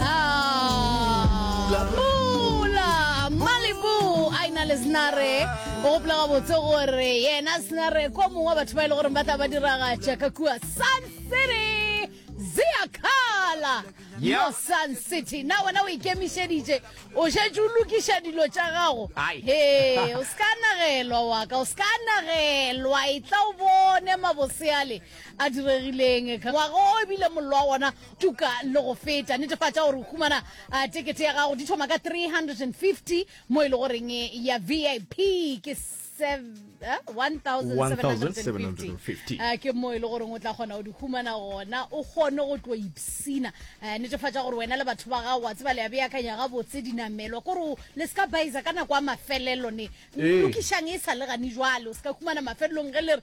Pula, pula, Malibu, a ina le Snare. O gopola gabotse gore yena Snare kwa mongwe wa batho ba e le gore ba tla ba diragatša ka kua Sun City. Ziakala Yeah. mo Sun City. Na wena o ikemišeditše, o šetše o lokiša dilo tša gago. Ai. Ee, o se ka nagelwa wa ka, o se ka nagelwa. E tla o bone maboseale a diregileng. Ngwaga o ebile mollo wa gona tuka le go feta netefatša gore o humana uh, tekete ya gago di thoma ka 350 mo e le goreng e ya vip ke 1750 eh, ke mo e le goreng o tla kgona go di humana gona o kgone go tlo ipsina eh, netefatša gore wena le batho ba gago wa tseba le ya beakanya gabotse dinamelwa kore le se ka baisa ka nako ya mafelelo ne lokišang e sa le gane jwale o se ka humana mafelelong ge le re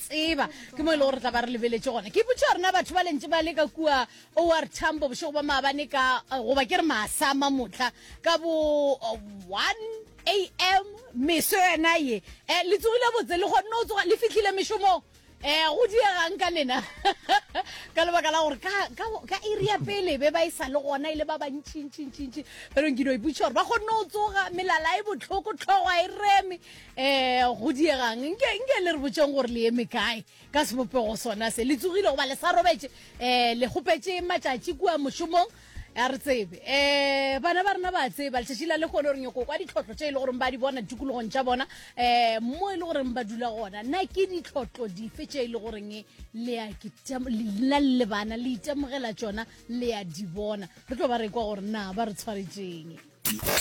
tseba ke mo e lego re tla ba re lebeletše gona ke ipotša gorena batho ba lentse ba le ka kua or tambo bošego ba maabane ka eh, goba ke re maasama motla ka bo 1 eh, am meso yona ye um le tsogile botse le kgonne go tsoga le fitlhile mešomong um go diegang ka lena ka lebaka la gore ka area pele be ba e sa le gona e le ba bantšintšintšintši berong ke no iputša gore ba kgonne go tsoga melala e botlhoko tlhogo a e reme eh go diegang nke nke le re botseng gore le eme kae ka sebopego sona se le tsogile goba le sa robetse eh le gopetse matšatši kua mošomong a re tsebe um bana ba rena ba tseba letšatši la le kgone gore nyoko kwa ditlhotlho tše e le goreng ba di bona tikologong tša bona um mo e le goreng ba dula gona na ke ditlhotlho dife tše e le goreng lena le bana le itemogela tsona le ya di bona re tlo ba re kwa gore na ba re tshwaretseng